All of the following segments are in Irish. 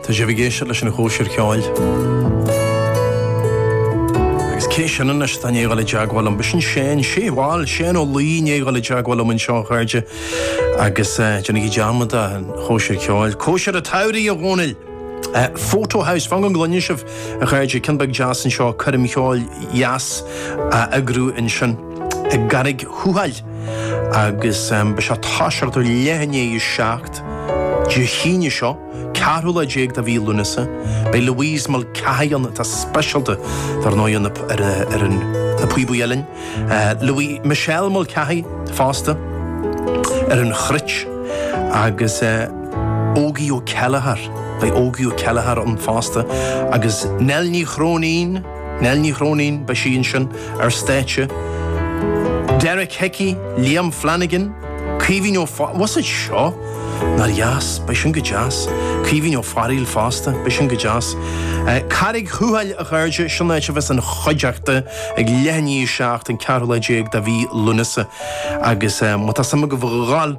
Tá sibh ag éisteacht leis an Chóisir Cheoil. Agus cé sin anois atá i ndiaidh a ghabháil i dteagmháil liom? B'shin é an té, bhuel, Séan Ó Laoi, i ndiaidh a ghabháil i dteagmháil liom anseo, a chairde. Agus eh, déanaigí dearmad den Chóisir Cheoil. Cóisir an tSamhraidh, a Dhónaill! Eh, Fota House, fan go gcluine sibh, a chairde, ceann beag deas anseo, coirm cheoil dheas á heagrú ansin i gCarraig Thuathail. Agus eh, beidh seo ag tosacht ag leath i ndiaidh a seacht. Acht. Dé hAoine seo, 14 lá de mhí Lúnasa, beidh Louise Mulcahy ann, atá speisialta dar ndóigh ar an, ar na píobaí uillinn. Louis, Michelle Mulcahy fosta ar an chruit agus Ógie Ó Céilleachair, beidh Ógie Ó Céilleachair ann fosta agus Nell Ní Chróinín, Nell Ní Chróinín, beidh sí ansin ar stáitse, Derek Hickey, Liam Flanagan, Caoimhín Ó Fear, was it seo? Nár dheas, beidh sin go deas. Caoimhín Ó Fearghail fosta, beidh sin go deas. Carraig Thuathail a chairde, sin an áit a bheas an chuideachta ag leath i ndiaidh a seacht, an ceathrú lá déag de mhí Lúnasa agus má tá suim agaibh a ghabháil,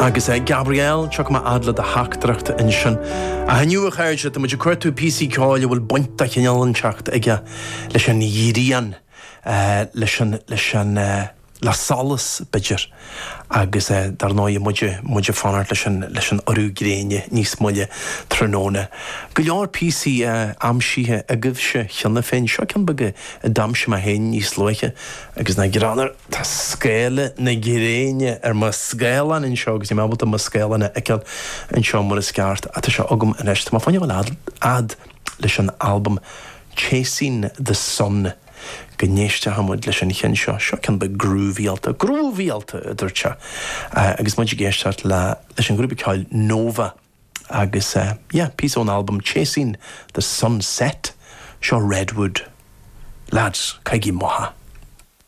Agus a Gabriel, go raibh maith agat le do theachtaireacht ansin. Ach inniu a chairde, tá muid ag cuartú píosaí ceoil a bhfuil baint de chineál inteacht aige leis an ghrian, leis an, leis an, le solas b'fhéidir agus dar ndóigh muid, muid ag fanacht leis an, leis an urú gréine níos moille tráthnóna. Go leor píosaí aimsithe agaibhse cheana féin, seo ceann beag a d'aimsigh mé féin níos luaithe agus nach greannmhar, Tá scáile na gréine ar mo scáileán anseo agus níl mé ábalta mo scáileán a fheiceáil anseo mar is ceart. Ah, tá sé agam anois. Tá mé féin ag gabháil a fhad leis an albam Chasing the Sun go n-éisteochaidh muid leis an cheann seo. Seo ceann beag grúvaíálta, grúvaíálta! a dúirt sé agus muid ag éisteacht le, leis an ghrúpa ceoil Nova agus eh, yeah, píosa ón albam Chasing the Sunset, seo Redwood. Leaids, caithigí amach é.